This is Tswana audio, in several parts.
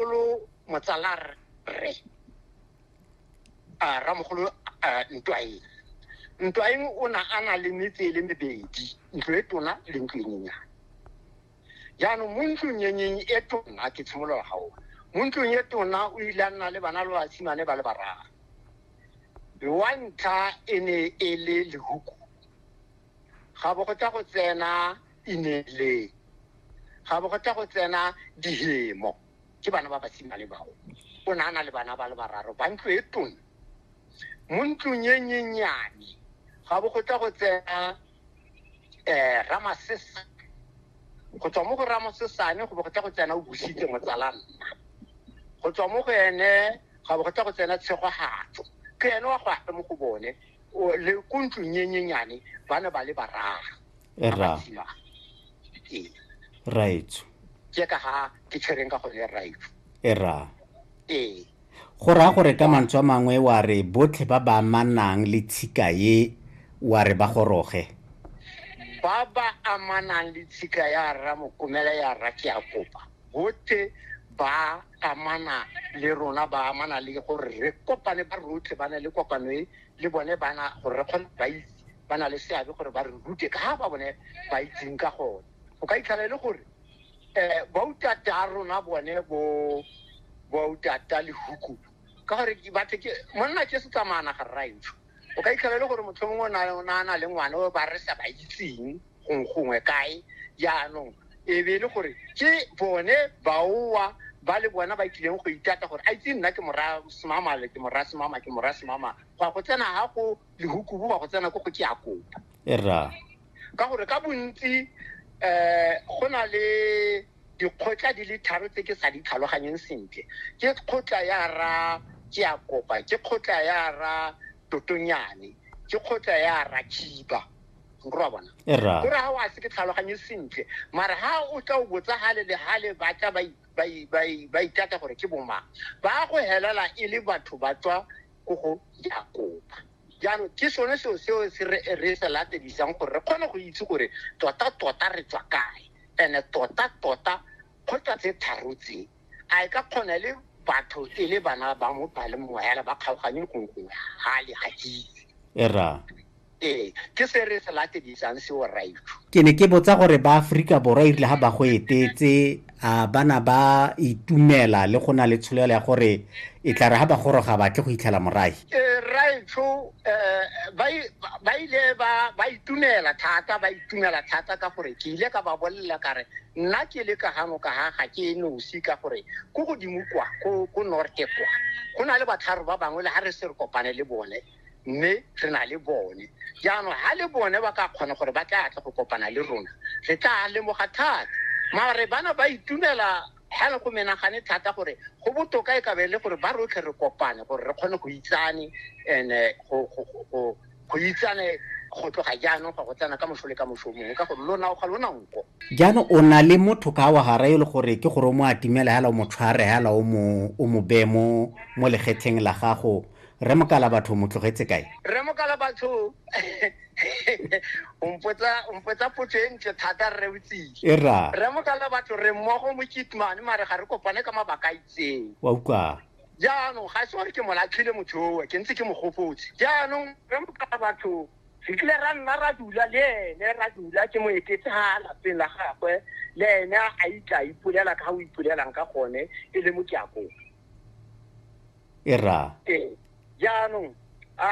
mogolo motsala rre a ramogolo ntwaeng ntwaeng o na a na le metse e le mebedi ntlo e tona le ntlo e nyenyane jaanong mo ntlong enyeng e tona ke tshimolola ga ona mo ntlong e tona o ile a nna le bana le basimane ba le bararo wa ntlha e ne e le lehuku ga bo go tsa go tsena ineeleng ga bo go tla go tsena dihemo ke bana ba basimane bao o ne a na le bana ba le bararo ba ntlo e tona mo ntlong e nyenyane ga bo go tla go tsena um ramasesa go tswa mo go ramosesane go bo go tla go tsena o busitse motsala nna go tswa mo go ene ga bo go tla go tsena tshegogatso ke ene wa go ape mo go bone le ko ntlong e nyenyane ba ne ba le bararo e ra raitso ke ka ga ke tshwereng ka gone raitso e ra ee go raya gore ka mantswe a mangwe wa re botlhe ba ba amanang le tshika ye wa re ba goroge ba ba amanang le tshika ya rra mokomela ya rra ke a kopa botlhe ba amana le rona ba amana le gore re kopane ba rotlhe ba na le kopano e le bone bana gore re kgone ba itse ba na le seabe gore ba re rute ka ba bone ba itseng ka gone o ka itlhala e le gore um bautata a rona bone bo bautata le huku ka gore batho ke monna ke setsamaana ga rraetsho o ka itlhala e le gore motlho mongwe o na na le ngwana o ba re sa ba itseng gongwe kae jaanong e be e le gore ke bone baowa ba le bona ba tlileng go itata gore a itse nna ke mora semamale ke mora semama ke mora semama go ya go tsena ga go lehuku boba go tsena ko go ke a kopa e rra ka gore ka bontsi um go na le dikgotla di le tharo tse ke sa di tlhaloganyeng sentle ke kgotla ya ra ke a kopa ke kgotla ya ra totonyane ke kgotla ya ra khiba nkorwa bona e rra gore ga o a se ke tlhaloganye sentle mara ga o tla o botsa gale le gale ba tla ba i- ba i- ba i- ba itata gore ke bomang ba go helela e le batho ba tswa ko go Jakoba. Jaanong ke sone seo seo se re re se latelisang gore re kgone go itse gore tota-tota re tswa kae and-e tota-tota kgotsa tse tharo tse a e ka kgona le batho e le bana ba mo ba le moela ba kgaoganye gongwe ga le ga itse. Era. Ee, ke se re se latedisang seo raifu. Ke ne ke botsa gore ba Aforika Borwa irile ga ba go etetse a bana ba itumela le go na le tsholelo ya gore e tla re ga ba goroga batle go itlhela morae. Eh, raifu eh, ba ile ba itumela thata ba itumela thata ka gore ke ile ka ba bolelela kare nna ke le ka gano ka ga ga ke e nosi ka gore ko godimo kwa ko norte kwa go na le batlharo ba bangwe le ga re se re kopane le bone mme re na le bone jaanong ga le bone ba ka kgona gore ba tla tle go kopana le rona re tla lemoga thata mare bana ba itumela ga le go menagane thata gore go botoka e ka be le gore ba rotlhe re kopane gore re kgone go itsane and eh, go- go- go- go- go itsane go tloga jaanong ga go tsena ka moso le ka moso mongwe ka gore lona o ga lona nko jaanong o na le motho ka wa gara e le gore ke gore o mo atimela hela o mo tshware hela o mo o mo beye mo mo legetlheng la gago Rre Mokalabatho mo tlogetse kae? Rre Mokalabatho o mpotsa o mpotsa potso e ntle thata rre o tsile. E ra. Rre Mokalabatho re mmogo mo Kitman mare ga re kopane ka mabaka a itseng. Wa utlwa. Jaanong ga se gore ke mo latlhile motho owe ke ntse ke mo gopotse. Jaanong Rre Mokalabatho re kile ra nna ra dula le ene ra dula ke mo etetse ha lapeng la gagwe le ene a itla ipolela ka ga o ipolelang ka gone e le mokiakong. e ra ee jaanong a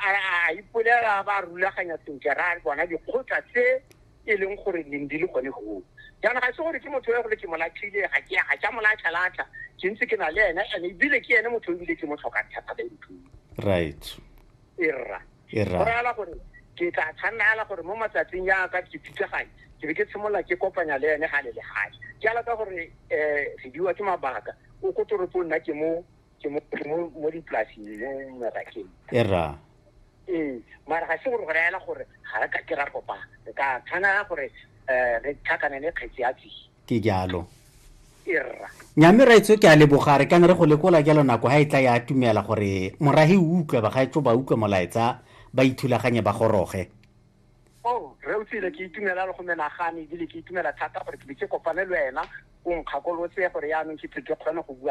a ipolela ba rulaganya sentle ra bona dikgotla tse e leng gore leng di le gone goo jaanong ga se gore ke motho yo gore ke molatlhile ga ke ga ke a molatlhalatlha ke ntse ke na le ene and ebile ke ene motho ebile ke mo tlhokang thata ba nthuo right e rra e go raya gore ke tla tshwanela gore mo matsatsing ya ka ke pitsaganye ke be ke tshimolola ke kopanya le ene ga le le gale ke ala ka gore um re diwa ke mabaka o ko toropong nna ke mo ke mo mo dipolasing mo merakeng e rra ee mara ga se gore go rayela gore ga re ka ke ra kopana re ka tshwanela gore um re tlhakanele kgetsi ya tsise ke jalo nyame raitso ke a leboga re kang re go lekola jalo nako ga e tla ya atumela gore morahi o utlwe bagaetso ba utlwe molaetsa ba ithulaganye ba goroge oh, re utlwile ke itumela le go menagane ebile ke itumela thata gore ke be ke kopane le wena o nkgakolotse gore yaanong ke tle ke kgone go bua